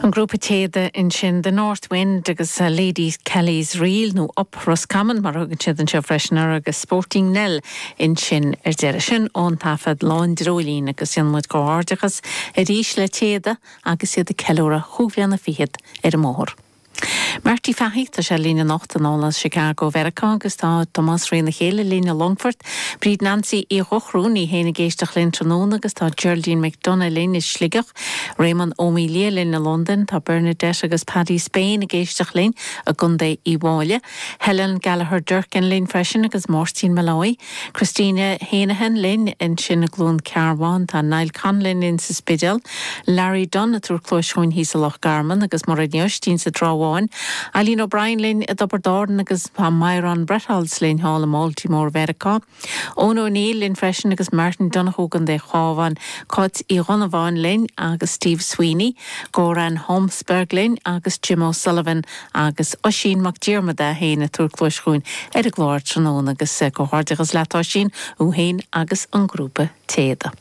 An grúpa téada ansin The North Wind agus Lady Kelly's Reel, nó Up Roscommon mar a thugann siad anseo freisin air, agus Sporting Nell ansin ar deireadh. Sin ón taifead Lá an Dreoilín agus déanann muid comhghairdeachas arís le Téada agus iad ag ceiliúradh chúig bhliana fichead ar an mbóthar. Marty Fahey, Tá sé linn anocht anall as Chicago Mheiriceá agus tá Tomás Ré na Chéile linn i Longfort. Bríd Nancy Uí Dhochru, í féin ag éisteacht linn tráthnóna agus tá Geraldine McDonagh linn i Sligeach. Réamonn Ó Maoildhia linn i Londain. Tá Bernadette agus Paddy Spain ag éisteacht linn i gContae Uíbh Fhailí. Helen Gallagher Durkin linn freisin agus Máirtín Molloy. Christina Heneghan linn ansin i gCluain Cearbán, tá Niall Conlon linn sa Spidéal, Larry Dunne ag tabhairt cluais chugainn thíos i Loch Garman agus Mairéad Ní Oistín sa Trá Bháin, Eileen O'Brien linn i dTiobraid Árann agus tá Myron Bretholz linn thall i mBaltimore Mheiriceá, Eoin O'Neill linn freisin agus Martin Donohoe i gContae an Chabháin, Cáit Uí Dhonnabháin linn agus Steve Sweeney, Goran Holmsberg linn agus Jim O'Sullivan Agus Oisín Mac Diarmada é féin ag tabhairt cluais chugainn ar an gclár tráthnóna agus comhghairdeachas leat a Oisín, thú féin agus an grúpa Téada.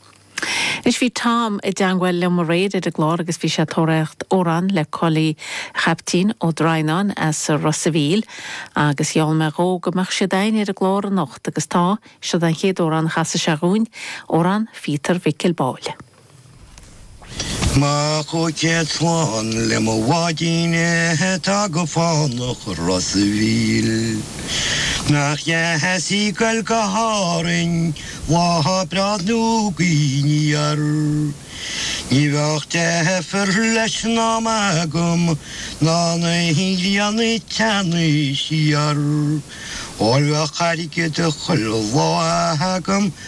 Anois bhí Tom i dteangmháil liom aréir ar an gclár agus bhí sé ag tóraíocht amhráin le Cóilí Chaiptín Ó Droighneáin as Ros a Mhíl agus gheall mé dhó go mbeadh siad a'ainn ar an gclár anocht agus tá, siod an chéad amhrán a chasfaidh sé dhúinn, Amhrán Phíotar Mhicil Báille. Mo chúig céad slán le mo bháidín atá go fánach i Ros a' Mhíl. Nach deas í ag goil go hÁrainn lá breá nó gaoth aniar. Ní bheadh deifir leis an am agam ná na híoglíonna ag teannadh siar. Óir bheadh airgead chuile lá agam.